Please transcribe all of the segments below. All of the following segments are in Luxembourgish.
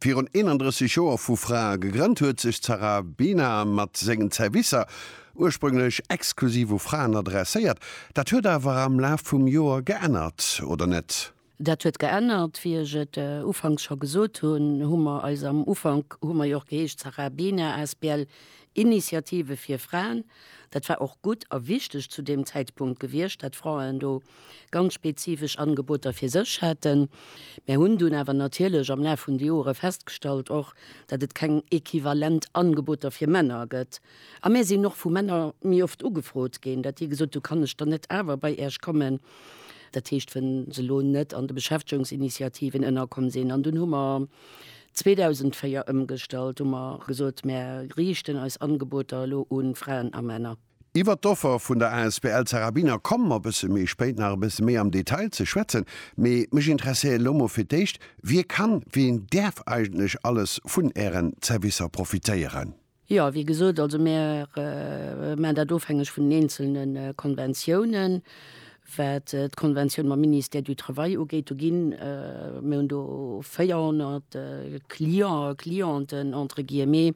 virun 31 Joer vu Frae gegrënnt huet, sech d'Sarabina mat sengen Zerwisser ursprünglech exklusiv u Fraen adresséiert. Dat huet awer am Laf vum Joer geännert, oder net? Dat huet geännert. Wéi ech et ufanks scho gesot hunn, hu mer eis, am Ufank hu mer jo och geheescht Sarabina asbl Initiative fir Fraen, dat war och gutt a wichteg zu deem Zäitpunkt gewiescht, dat Fraen do ganz spezifesch Angeboter fir sech haten. Mär hunn dunn awer natierlech am Laf vun de Jore festgestallt och, datt et keng equivalent Angeboter fir Männer gëtt. A mär sinn och vu Männer méi oft ugefrot ginn, datt déi gesot hu kann ech dann net awer bei Iech kommen, dat heescht wann se elo net an de Beschäftegungsinitiativen ënnerkomm sinn. An dunn hu mer 2004 ëmgestallt, hu mer gesot mär riichten eis Angeboter elo u Fraen a Männer. Iwwert d'Offer vun der asbl Zarabiner komme mer e bësse méi spéit nach e bësse méi am Detail ze schwätzen, mee mech interesséiert elo mol fir d'éischt, Wie kann, wien däerf eigentlech alles vun Ären Zerwisser profitéieren? Jo, wéi gesot, also mir maachen dat ofhängeg vun den eenzelne Konventiounen. Wat d'Konventioun mam Ministère du Travail ugeet, do ginn, mir hunn do 400 Clients a Clienten entre guillemets,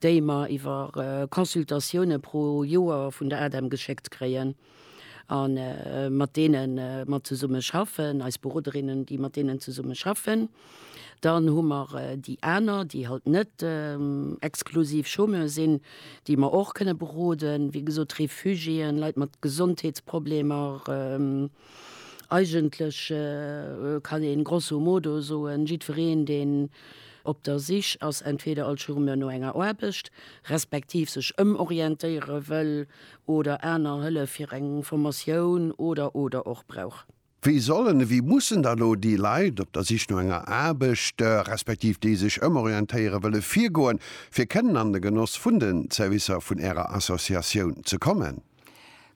déi mer iwwer Consultatioune pro Joer vun der ADEM geschéckt kréien a mat deene mer zesumme schaffen, eis Beroderinnen, déi mat deenen zesumme schaffen. Dann hu mer déi aner, déi halt net exklusiv Chômeur sinn, déi mer och kënne beroden, wéi gesot Refugiéen, Leit mat Gesondheetsproblemer. Eigentlech kann ee grosso modo soen, jiddwereen, deen op der Sich ass entweder als Chômeur no enger Aarbecht, respektiv sech ëmorientéiere wëll oder aner Hëllef fir eng Formatioun oder, oder och brauch. Wéi sollen, wéi mussen da lo déi Leit op der Sich no enger Aarbecht, respektiv déi sech ëmorientéiere wëlle virgoen, fir kënnen an de Genoss vun den Zerwisser vun Ärer Associatioun ze kommen?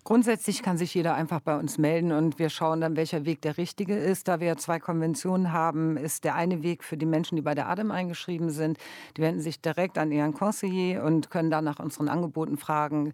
Grundsätzlich kann sich jeder einfach bei uns melden und wir schauen dann, welcher Weg der richtige ist. Da wir ja zwei Konventionen haben, ist der eine Weg für die Menschen, die bei der ADEM eingeschrieben sind, die wenden sich direkt an ihren Conseiller und können dann nach unseren Angeboten fragen.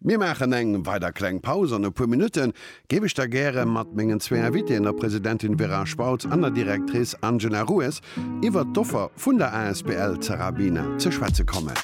Mir maachen eng weider kleng Paus an e puer Minutte géif ech da gäre mat mengen zwee Invitéen, der Presidentin Vera Spautz an der Directrice Angela Rues, iwwert d'Offer vun der asbl Zerabina ze schwätze kommen.